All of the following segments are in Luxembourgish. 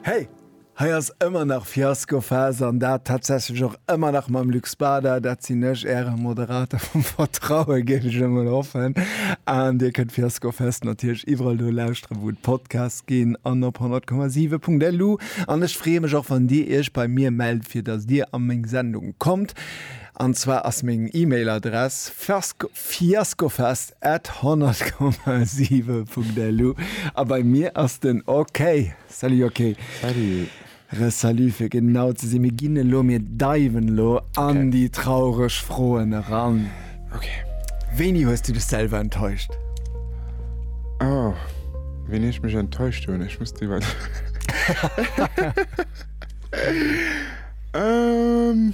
Hey! Hei ass ëmmer nach Fiaskophas an dat tatsächlech och ëmmer nach mam Luc Spada. Dat sinn ech, Äre Moderator vum Vertrauen, géif ech emol hoffen. An Dir kënnt Fiaskofest natierlech iwwerall do lauschteren, wou et Podcasts ginn an op 100,7.lu. An ech freeë mech och, wann Dir Iech bei mir mellt, fir datt Dir a meng Sendung kommt. An zwar ass meng E-Mail-Adress fiasko. Fiaskofest at 100,7.lu a bei mir ass den OK. Salut OK. Salut. Re Salut fir genau ze sinn. Mir ginn elo, mir diven elo an okay. déi traureg Froen eran. Okay. Wéini hues du dech selwer enttäuscht? Oh, wéini ech mech enttäuscht hunn? Ech muss iwwer. ähm.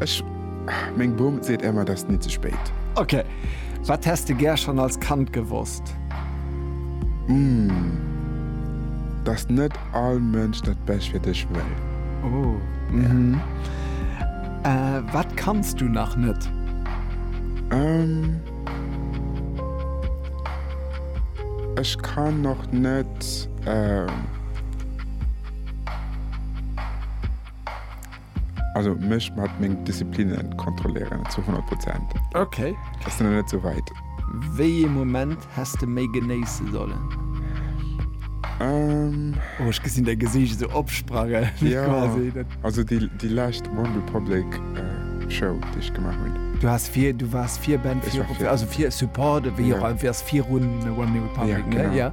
Ech meng Bom seet emmer dass ni ze spéit. Ok, wat häss de gär schon als Kand gewosst? Umm, dass net all Mënsch dat Bescht fir dech wëll. Oh, mhm. Wat kanns du nach net? Umm, ech kann nach net. Also mech mat meng Disziplinen kontrolléieren zu 100 Prozent. Ok. Ass de nach net sou weit. Wéi ee Moment häss de méi genéisse sollen? Ehm. Oh ech gesinn däi Gesiicht esou opsprange quasi. Jo, also déi lescht OneRepublic Show déi ech gemaach hunn. Du has vir, du waars Virband, also fir Support, wéi och, du waars virun OneRepublic, ne?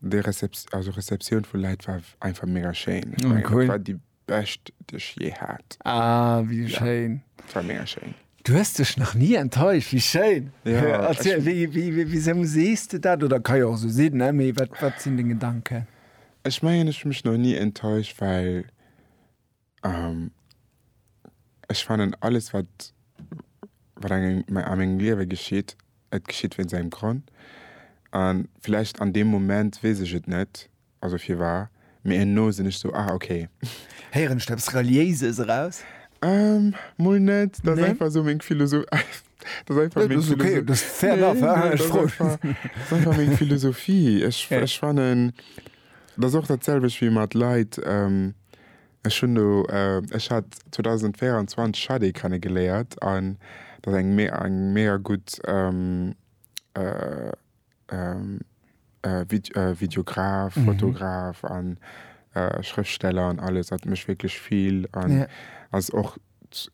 Dei Receptioun vu Leit war einfach mega schéin. Ech mengen dat war déi bescht déi ech je hat. Ah wéi schéin. Dat war mega schéin. Du hues dech nach ni enttäuscht, wéi schéin. Erziel, wisou sees de dat? Oder ka jo och esou sinn, mee wat sinn deng Gedanken? Ech mengen ech hunn mech nach ni enttäuscht, well. Ech fannen alles wat wat engem a mengem Liewe geschitt, et geschitt wéinst engem Grond. An villäicht an deem Moment weess ech et net, also firwar, mee herno sinn ech sou, ah okay. Héieren ech do eppes Reliéises eraus? Mol net, dat ass einfach sou meng Philosoph. Dat ass einfach meng Philosophie. Nee, dat ass okay, dat ass fair enough. Dat ass einfach meng Philosophie. Ech fannen, dat ass och dat selwecht wéi mat Leit, Ech hunn do, ech hat 2024 Shadé kennegeléiert an dat ass eng eng mega gutt Videograf, Fotograf an Schrëftsteller an alles. Hat mech wierklech vill an ass och.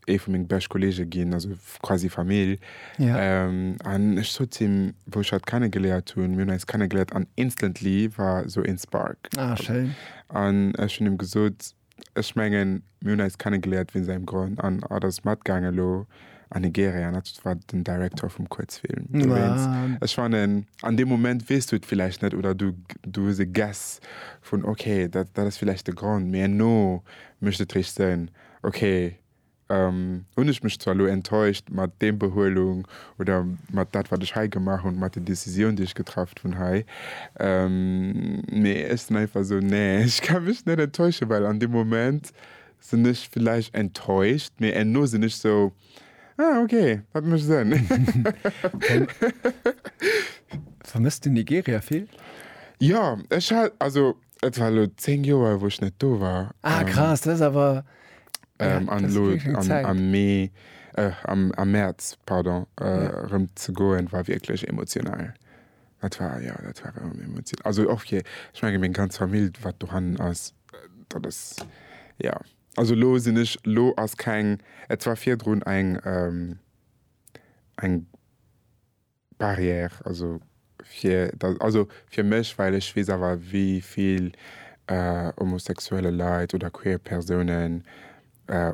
ee vu meng bescht Kollege ginn, also quasi Famill. Ja. Ähm, an ech sot zu him, wou ech hatt kennegeléiert hunn, mir hunn eis kennegeléiert an instantly war esou een Spark. Ah, schéin. An ech hunn him gesot, ech mengen, mir hunn eis kennegeléiert wéinst engem Grond. An hatt ass matgaangen elo an Nigeria an hatt war den Director vum Kuerzfilm dowéinst. Ah. Ech fannen, an deem Moment weess du et villäicht net oder du, du hues e Guess vun, okay, dat, dat ass villäicht de Grond, mee herno mécht et réischt Sënn. Ok, hunn ech mech zwar elo enttäuscht mat deem Behuelung oder mat dat wat ech hei gemaach hunn, mat den Décisioun déi ech getraff hunn hei, mee ech sinn einfach esou, nee ech ka mech net enttäuschen, well an deem Moment sinn ech villäicht enttäuscht, mee enno sinn ech esou, ah ok, dat mécht Sënn. Vermësst de Nigeria vill? Jo, ech hat also. Et war elo 10 Joer wou ech net do war. Ah krass, dat ass awer, ja, dat ass wierklech eng Zäit. An am Mee, am Mäerz, pardon, erëm ze goen, war wierklech emotional. Dat war, jo, dat war erëm emotional. Also och fir, ech menge meng ganz Famill wat dohannen ass, dat ass, jo. Also elo sinn ech, elo ass keng, et war virdrun eng, eng. Barrière, also fir dat, also fir mech, well ech weess awer wéi vill homosexuelle Leit oder queer Persounen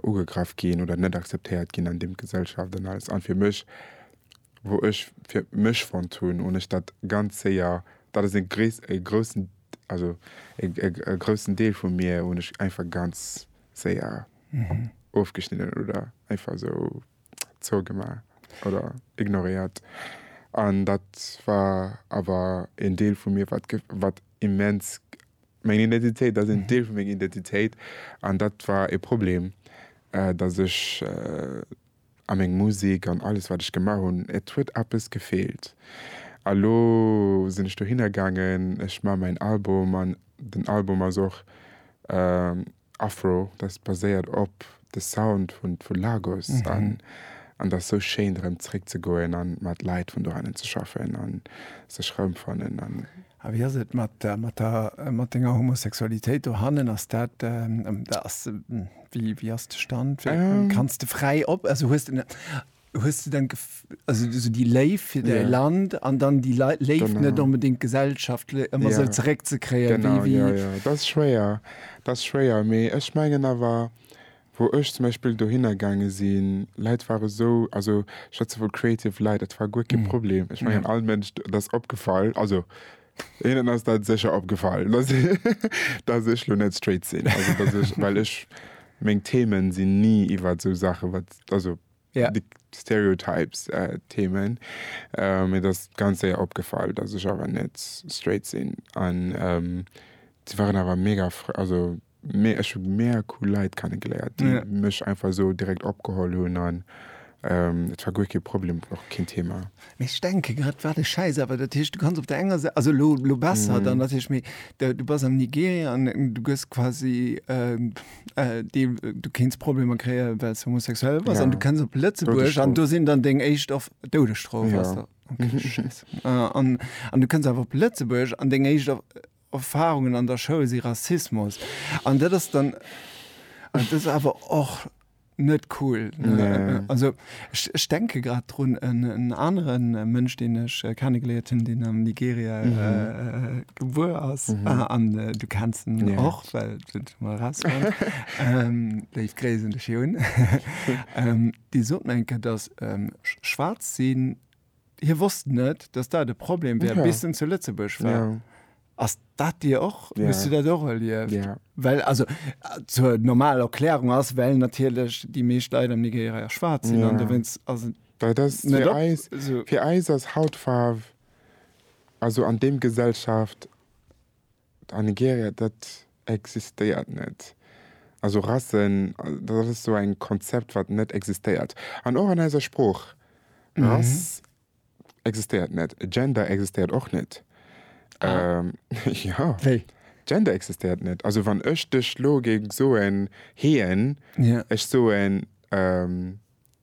ugegraff ginn oder net akzeptéiert ginn an deem Gesellschaft an alles an fir mech, wou ech fir mech fonnt hunn, hunn ech dat ganz séier, dat ass e gréis, e groussen, also e groussen Deel vu mir hunn ech einfach ganz séier ofgeschnidden oder einfach esou. zougemaach oder ignoréiert. An dat war awer een Deel vu mir, wat wat immens meng Identitéit, dat ass een Deel vu menger Identitéit an dat war e Problem, datt ech a meng Musek an alles, wat ech gemaach hunn, et huet eppes gefeelt. A lo sinn ech dohinner gaangen, ech maache mäin Album an den Album ass och Afro, dat baséiert op de Sound vu Lagos an an ass sou schéin erëm zréck ze goen a mat Leit vun dohannen ze schaffen a sech erëmfannen. A wéi ass et mat mat denger Homosexualitéit dohannen? Ass dat ass wéi ass de Stand? Kanns de fräi op, also hues de. Hues du dann also so déi Léift fir däi Land an dann déi Léift net onbedéngt gesellschaftlech ëmmer esou zeréck ze kréien? Genau, jo, jo, dat ass schwéier, dat ass schwéier. Mee ech mengen awer, wou ech zum Beispill dohinner gaange sinn, Leit ware esou, also ech schwätze vu creative Leit, dat war guer kee Problem. Ech mengen all Mënsch, dat ass opgefall, also hinnen ass dat sécher opgefall, datt ech elo net straight sinn, well ech meng Themen sinn ni iwwert esou Saache wat, also yeah. de Stereotypes äh, Themen. Äh, mir das ganz séier opgefall, dass ech awer net straight sinn. An ähm, sie waren awer mega also mé ech hun mega cool Leiit kennengeléiert, die yeah. mech einfach so direkt opgeholl hunn an ähm, et war guer ke Problem och kein Thema. Mech denke grad war de Scheiß awer dat Hicht du kannst op der enger Seite also lo, lo besser mm. dann dat Hicht méi du bass am Nigeria an du gëss quasi äh, Äh, die, du kenns Probleme kreieren, weil es homosexuell war. Ja. Und du kennst op Lëtzeburg an du sind dann deng echt auf Doudestrof. Ja. Okay, mhm. äh, und, und du kennst einfach op Lëtzeburg an deng echt auf Erfahrungen an der Show sie Rassismus. Und das ist dann, und das ist aber auch net cool. Nee. Also ech denke grad drun en aneren Mënsch, deen ech äh, kennengeléiert hunn, deen am Nigeria mhm. äh, gebuer ass mhm. ah, an äh, du kennst en ja. och well mal raus ähm, Déi gréisen de Joun. ähm, Di sot enke, datt ähm, schwaarz sinn Hie wosst net, datt dat e Problem wär, bis en zu Lëtzebuerg war. Ja. Ass dat Dir och? Ja. Hues du dat och erlieft? Ja. Well, also, zur normal Erklärung ass, well natierlech déi meescht Leit am Nigeria jo schwaarz sinn, an Ja. dowéinst ass et Dat ass net fir op. eis, So. fir eis ass Hautfaarf, also an deem Gesellschaft, A Nigeria, dat existéiert net. Also Rassen, dat ass esou eng Konzept, wat net existéiert. An och an eiser Sprooch, Rass existéiert net. Gender existéiert och net. Jo, Gender existéiert net. Also wann ech dech elo géing soen, hien, ech soen,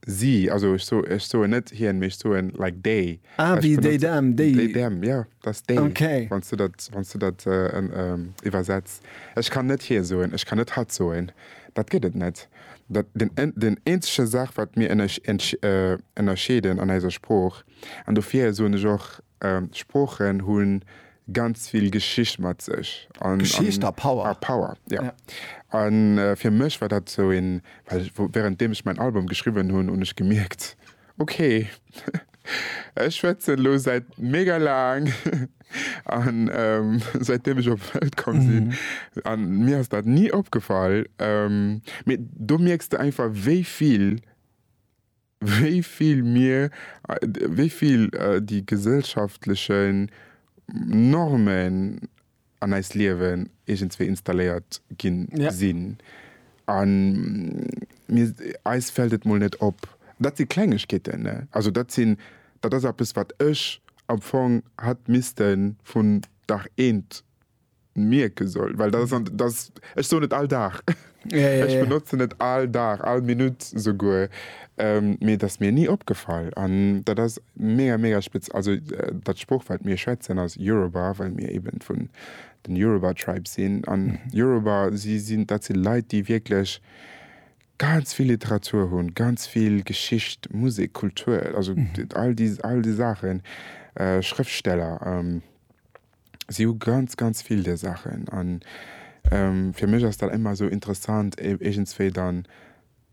Si, also ech so, ech soen net hien, mee ech soen like they. Ah, Ech wéi déi benotze- Dam, déi. They, them, ja, dass they, Okay. wann s du dat, wann s du dat äh, en, ähm, iwwersetz. Ech kann net hie soen, ech kann net hatt soen. Dat gëtt et net. Dat, den, en, den eenzege Saach, wat mir ënnersch, entsch, äh, ënnerscheeden an eiser Sprooch, an dofir soen ech och Sproochen hunn ganz vill Geschicht mat sech an Geschicht a Power. A Power, jo. An fir mech war dat sou een, well während deem ech mäin Album geschriwwen hunn, hunn ech gemierkt, okay, ech schwätzen elo säit mega laang an säit deem ech op d'Welt komm sinn an mir ass dat ni opgefall, mee do mierks de einfach wéi vill wéi vill mir, wéi vill déi gesellschaftlechen Normen an eist Liewen iergendswéi installéiert gi sinn. A mir, eis fält et mol net op. Dat si Klengegkeeten, ne? Also dat sinn, dat ass eppes, wat ech am Fong hätt misste vun Dag eent, mierke soll, well dat ass an dass ech soen et all Dag, ech benotzen et all Dag, all Minutt souguer, mee et ass mir ni opgefall an dat ass mega, mega spez. Also dat Sprooch wat mir schwätzen ass Yoruba, well mir eben vun den Yoruba Tribe sinn an Yoruba si sinn, dat si Leit déi wierklech ganz vill Literatur hunn, ganz vill Geschicht, Musek, Kultur, also all déi all déi Saachen, Schrëftsteller. si hu ganz, ganz vill där Saachen. An fir mech ass dat ëmmer esou interessant, iergendswéi dann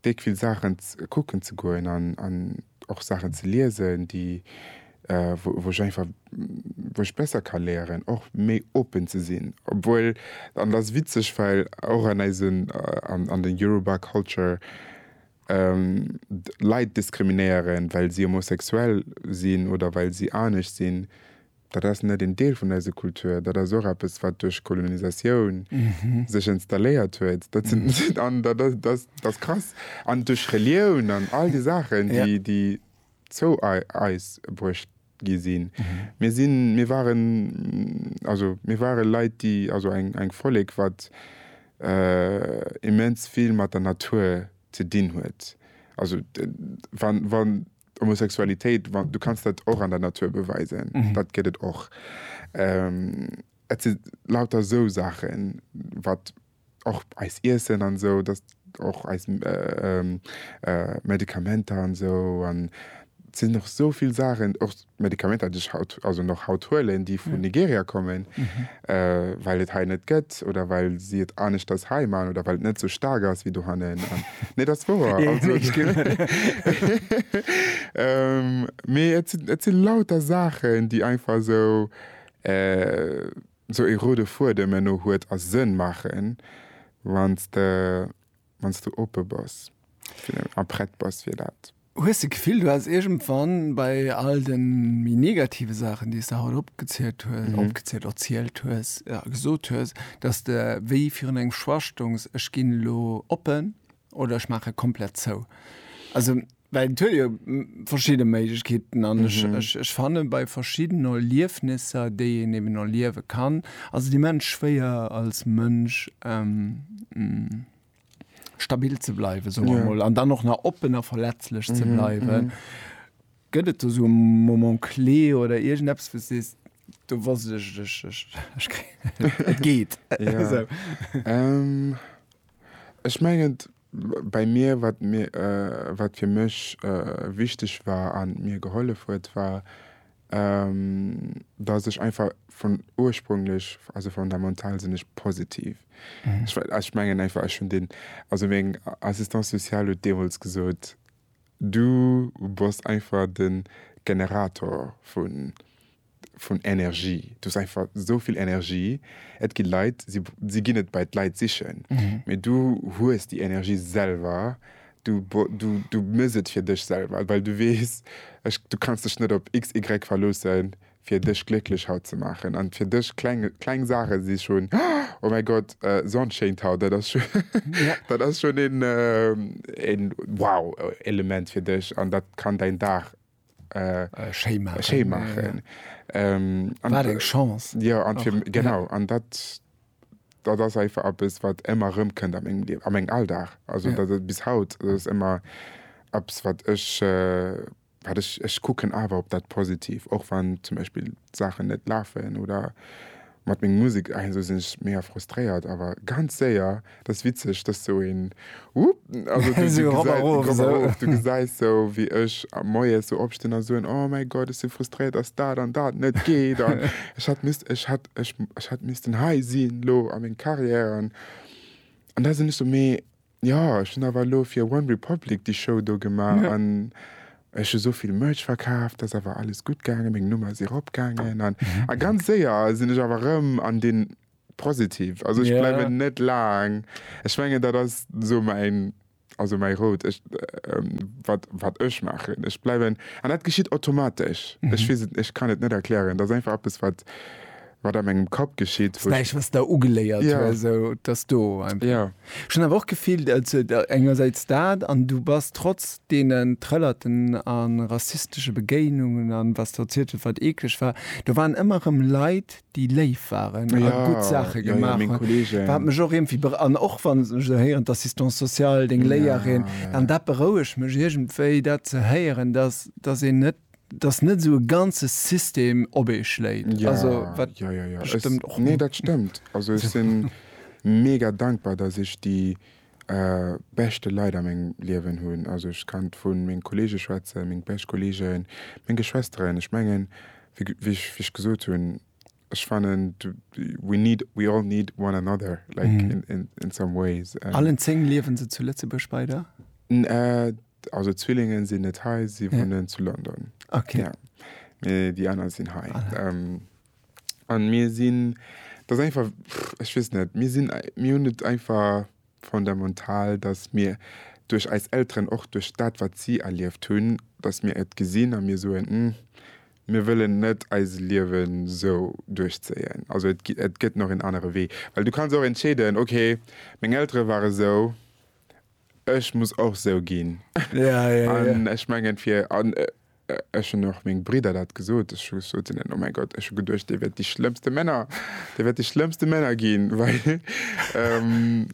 déck vill Saachen kucken ze goen an och Saachen ze liesen, déi, wou ech einfach, wou ech besser ka léieren, och méi open ze sinn. Obwuel, an dat ass witzeg, well och an eisen, an der Yoruba Culture Leit diskriminéieren, well si homosexuell sinn oder well si anescht sinn, Dat ass net een Deel vun eiser Kultur. Dat ass och eppes, wat duerch Kolonisatioun sech installéiert huet. Dat sinn, an dat ass, dat ass krass. An duerch Relioun an all déi Saachen, déi zou eis bruecht gi sinn. Mir sinn, mir waren, also mir ware Leit, déi, also eng Vollek, wat immens vill mat der Natur ze dinn huet. Also wann, wann. Homosexualitéit, du kanns dat och an der Natur beweisen, dat gëtt et och. Et si lauter esou Saachen, wat och eist Iessen an esou, dat och eis Medikamenter an esou. An et sinn och esou vill Saachen, och Medikamenter, déi ech haut, also nach haut huelen, déi vun Nigeria kommen. well et hei net gëtt oder well si et aneschters hei man oder well et net sou staark ass wéi dohannen an nee dat ass wouer also mee et sinn et sinn lauter Saachen déi einfach sou sou ee roude Fuedem herno huet a Sënn maachen wann s de wann s du oppe bass a prett bass fir dat. Hues de Gefill, du häss iergendwann bei all de méi negative Saachen, déi s de haut opgezielt hues, opgezielt, erzielt hues, ja gesot hues, dass de wéi virun engem Schwachstongs, Ech ginn elo oppen oder ech maache komplett zou? Also. Well et huet jo verschidde Méiglechkeeten an ech, ech, ech fanne bei verschiddenen Erliefnisser, déi een eben erliewe kann, ass et immens schwéier als Mënsch stabil ze bleiwen, soe mer mol, an dann och nach oppen a verletzlech ze bleiwen. Gëtt et do sou e Moment clé oder iergendeppes, wou s sees, do wosst ech, ech, ech, ech kréien et, et geet esou? Ech mengen, Bei mir, wat mir, wat fir mech wichteg war an mir gehollef huet, war dass ech einfach vun ursprünglech, also fondamental sinn ech positiv. Ech mengen einfach ech hunn deen, also meng Assistante sociale huet deemools gesot, du bass einfach de Generator vun, vun Energie. Du hues einfach esou vill Energie. Et gi Leit, si, si ginn et bei d'Leit sichen, mee du hues déi Energie selwer. Du, du, du mëss et fir dech selwer, well du weess, ech, du kanns dech net op XY verloossen, fir dech glécklech haut ze maachen. An fir dech kleng, kleng Saache si schonn, oh mäi Gott, Sonn schéint haut, dat ass scho, dat ass schonn een, een wow-Element fir dech an dat kann däin Dag schéi maachen. Wat eng Chance! Jo, genau. An dat ass einfach eppes, wat ëmmer erëmkënnt a mengem Liewen, a mengem Alldag. Also dat ass bis haut, dat ass ëmmer eppes, wat ech, wat ech, ech kucken awer op dat Positiv, och wann zum Beispill d'Saachen net lafen oder Mat meng Musek, ah esou sinn ech mega frustréiert awer ganz séier, dat ass witzeg, dass sou een Wupp, also du gesäis, ropp a rof, ropp a rof, du gesäis sou wéi ech moies sou opstinn a soen, oh mäi Gott ech sinn frustréiert dass dat an dat net geet an ech hätt misst, ech hätt, ech hätt missten hei sinn elo a meng Carrière an da sinn ech sou mee Jo, ech hun awer elo fir OneRepublic déi Show do gemaach an ech hu souvill Merch verkaaft, dass awer alles gutt gaangen, meng Nummer ass erop gaangen an a ganz séier sin ech awer rëm an dé Positive. Also ech bleiwen net laang. Ech mengen dat ass sou mäin, also mäi Rout, ech wat wat ech maachen, ech bleiwen an dat geschitt automatesch. Ech weess et, ech kann et net erklären, dat ass einfach eppes wat. wat am engem Kapp geschitt. Wou ech was der ugeléiert ja sou dass do einfach ja schon awer och gefillt also engersäits dat an du bass trotz deenen trëllerten an rassistesche Begéinungen an was der zielt huet wat eekleg war do waren ëmmer rëm Leit déi léif waren a gutt Saache gemaach hunn wat mech och iergendwéi be an och wann ech esou héieren d'Assistance sociale deng Léierin an dat berouegt mech iergendwéi dat ze héieren dass dass een net dass net esou e ganze System op ee schléit. Ja, also, wat ja, ja, ja. Stëmmt es, och. Nee, dat stëmmt. Also ech sinn mega dankbar, dass ech déi äh, beschte Leit a mengem Liewen hunn. Also ech kann vu menge Kollege schwätzen, meng bescht Kollegen, meng Geschwesteren. Ech mengen, wéi ech, wéi ech gesot hunn, Ech fannen we need we all need one another like mm. in, in, in some ways. Um, Allen zeng liewen se zu Lëtzebuerg beider? Äh, also Zwillingen sinn net hei, si ja. wohnen zu London. Okay. Ja. Nee, die aner sinn hei. Ähm, an mir sinn das einfach pff, ich wiss net mir sinn mir hun net einfach fondamental, datt mir duerch eis Elteren, och duerch dat wat si erlieft hunn, datt mir et gesinn a mir soen, Hm, mir wëllen net eise Liewen esou duerchzéien, also et et gëtt nach en anere Wee. Well du kanns och entscheeden, ok, meng Eltere waren esou, ech muss och esou ginn. An ech mengen fir. Ech hunn och meng Bridder dat gesot. Ech hu gesot hinnen, Oh mäi Gott, ech hu geduecht, dir wäert déi schlëmmste Männer, dir wäert déi schlëmmste Männer ginn, well,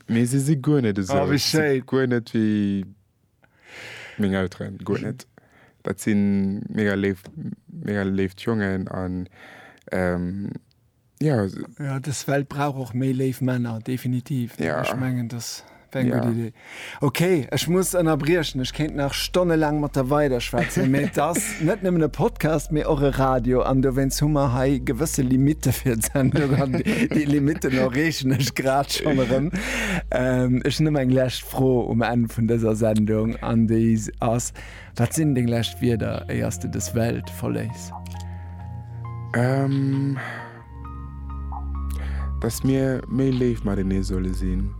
mee si si guer net esou. Oh, wéi schéin. Si si guer net wéi meng Elteren, guer net. Dat si mega léif, mega léift Jongen an, Ja, ja des Welt brauch och méi léif Männer definitiv ja. Ech mengen das eng ja. gut Idee. Okay, ech muss ënnerbriechen. Ech kéint nach Stonne lang mat der weider schwätzen. Mä das net nëmmen e Podcast, mé och e Radio an do wéins Hummer hei gewësse Limite fir zen Di Limite no rechen ech grad schon erëm. Ähm, ech nëmm eng lächt fro um en vun dëser Sendung an déi ass. Äh, Wat sinn deng lescht Wierder éiers de dës Welt verléiss? Ähm, dass mir méi léif matenee solle sinn.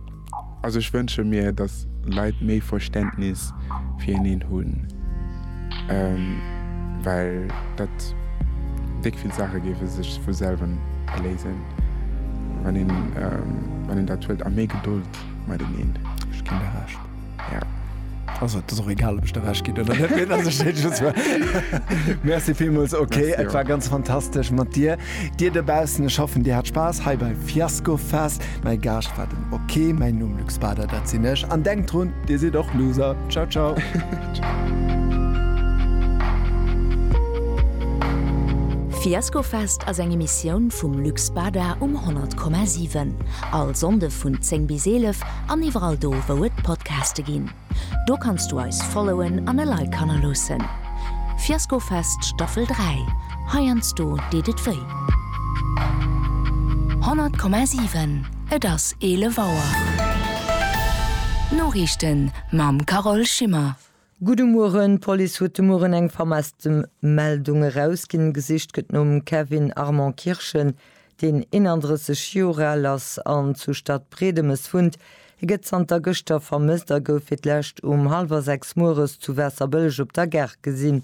Also ech wënsche mir, dass Leit méi Verständnis fir eneen hunn, ähm, well dat déck vill Saache géife sech vu selwen léisen, wann een, ähm, wann een dat huet, a méi Gedold mateneen. Ech ginn der Recht. Also et ass och egal, ob ech der Recht ginn oder net. Mir, dass ech dat just war. Merci villmools. Okay, Merci et war och. ganz fantastesch mat dir. Dir dobaussen, ech hoffen, dir hat Spaass hei bei Fiasco Fest. Mäi Gaascht war den OK. Mäin Numm Luc Spader, dat sinn ech. An denkt drun, dir sidd och Loser. Ciao, ciao. Fiasco Fest ass eng Emissioun vum Luc Spader um 100,7. All Sonnde vun 10 bis 11 an iwwerall do wou et Podcaste ginn. Do kanns du eis followen an e Like hannerloossen. Fiaskofest Staffel 3, heiansdo deet et wéi. 100,7 Et ass 11 Auer. D'Noriichten mam Carole Schimmer. Gudde Mueren, d'Police huet de Mueren eng vermesste Meldung erausginn. Gesicht gëtt nom Kevin Armand Kirschen, deen 31 Joer al ass an zu Stadbriedemes wunnt. Hie gëtt zanter gëschter vermësst a gouf fir d'lescht um hallwer 6 mueres zu Waasserbëlleg op der Gare gesinn.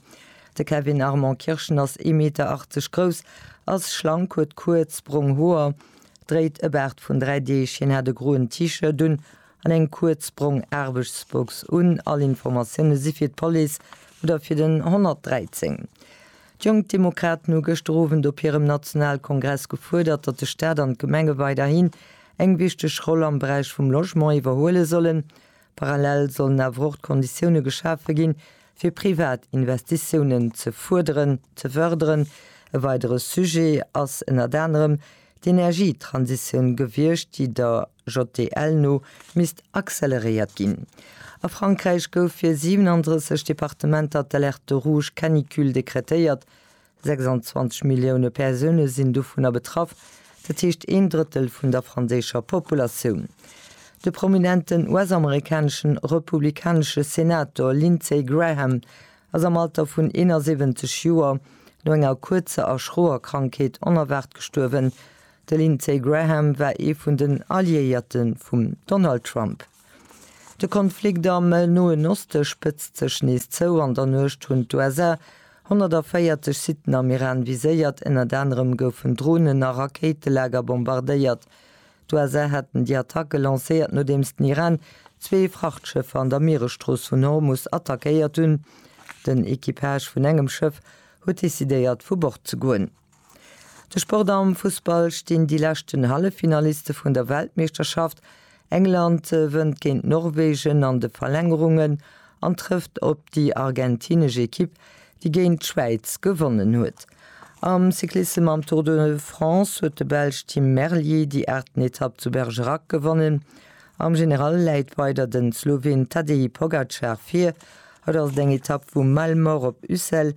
De Kevin Armand Kirschen ass ee Meter 80 grouss, ass schlank, huet kuerz, brong Hoer, dréit e Baart vun dräi Deeg. Hien hat e groen T-Shirt un An eng kuerz brong Aarbechtsbox un all Informatioune si fir d'Police oder fir den 113. D'Jonk Demokraten hu gëschter Owend op hirem Nationalkongress gefuerdert, datt de Staat an d'Gemenge weiderhin eng wichteg Roll am Beräich vum Logement iwwerhuele sollen. Parallel sollen awer och d'Konditioune geschafe ginn, fir privat Investitiounen ze fërderen. E weidere Sujet ass ënnert anerem d'Energietransitioun gewiescht, déi der. JDL no misst acceleréiert ginn. A Frankräich gouf fir 37 Departementer d'Alerte rouge canicule dekretéiert. 26 Millioune Persoune sinn dovunner betraff, dat heescht een Drëttel vun der franséischer Populatioun. De prominenten US-amerikanesche republikanesche Senator Lindsey Graham ass am Alter vun 71 Joer no enger kuerzer a schroer Krankheet onerwaart gestuerwen, De Lindsey Graham war ee vun den Alliéierte vum Donald Trump. De Konflikt am Noen Oste spëtzt sech nees zou. An der Nuecht hunn d'USA 140 Siten am Iran viséiert. Ënnert anerem goufen Dronen a Rakéitelager bombardéiert. D'USA haten déi Attacke lancéiert, nodeems den Iran zwee Frachtschëffer an der Mieresstrooss vun Hormus attackéiert hunn. Den Equipage vun engem Schëff huet decidéiert, vu Bord ze goen. De Sport am Fussball stinn déi leschten Halleffinaliste vun der Weltmeeschterschaft. England wënnt géint Norwegen an de Verlängerungen an trëfft op déi argentinesch Ekipp, déi géint d'Schwäiz gewonnen huet. Am Cyclissem am Tour de France huet de Belsch Tim Merlier déi aachten Etapp zu Bergerac gewonnen. Am General läit weider den Sloween Tadej Pogacar vir. Haut ass et eng Etapp vu Malemort op Ussel.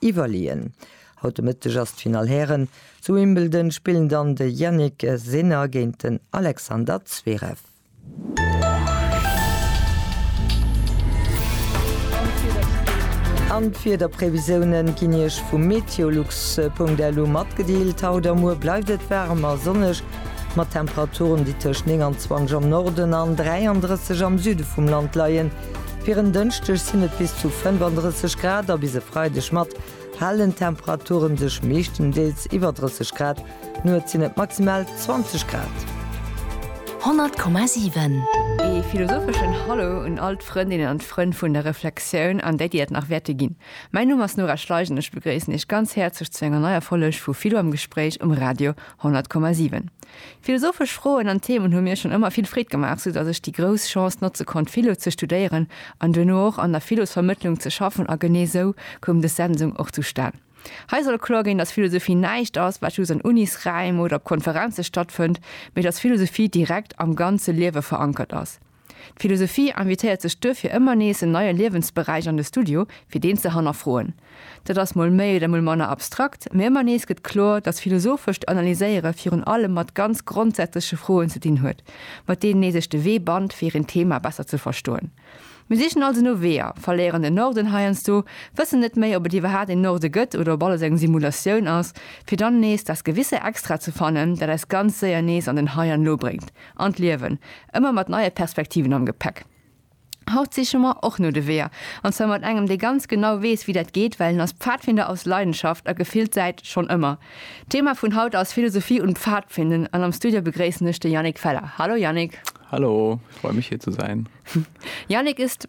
Iwwerleeën. Haut de Mëtteg ass d'Finall Hären. Zu Wimbledon spillen dann de Jannik Sinner géint den Alexander Zverev. An d'Wiederprevisioune ginn Iech vu meteolux.lu matgedeelt. Haut a muer bleift et waarem a sonneg, mat Temperaturen, déi tëscht 29 am Norden an 33 am Süde vum Land leien. Fir en Dënschdeg sinn et bis zu 35 Grad a bis e Freideg mat halen Temperature sech meeschtendeels iwwer 30 Grad. Nuets sinn et maximal 20 Grad. 100,7. Ee philosopheschen Hallo un all d'Frëndinnen an d'Frënn vun der Reflexioun an déi, déi dat nach wäerte ginn. Mäin Numm ass Nora Schleich an ech begréissen Iech ganz häerzlech zu enger neier Folleg vu Philo am Gespréich um Radio 100,7. Philosophesch Froen an Themen hu mir schonn ëmmer vill Freed gemaach, soudatt ech déi grouss Chance notze konnt Philo ze studéieren an duerno och an der Philosvermëttlung ze schaffen a genee esou koum dës Sendung och zustan. Hei soll kloer ginn, datt Philosophie näischt ass, wat just an Unisräim oder op Konferenze stattfënnt, mee datt Philosophie direkt am ganze Liewe verankert ass. D'Philosophie invitéiert sech duerfir ëmmer nees en neie Liewensberäich an de Studio, fir deen ze hannerfroen. Dat ass mol méi oder mol manner abstrakt, mee ëmmer nees gëtt kloer, datt philosophescht Analyséiere virun allem mat ganz grondsätzleche Froen ze dinn huet, mat deenen ee sech de Wee bannt, fir een Theema besser ze verstoen. Mir sichen also no Weeër, verléieren den Norden heiansdo, wëssen net méi, ob et iwwerhaapt een Norde gëtt oder ob alles eng Simulatioun ass, fir dann nees das gewisse Extra ze fannen, dat eis ganz séier nees an den Hei an Lo bréngt, An d'Liewen, ëmmer mat neie Perspektiven am Gepäck. Haut siche mer och no de Weeër, an zwar mat engem, dee ganz genau weess, wéi dat geet, well en ass Pfadfinder aus Leidenschaft a gefillt säit schonn ëmmer. D'Thema vun haut ass Philosophie und Pfadfinden an am Studio begréissen ech de Yannick Feller. Hallo Yannick! Hallo, ich freue mich hier zu sein. Yannick ist.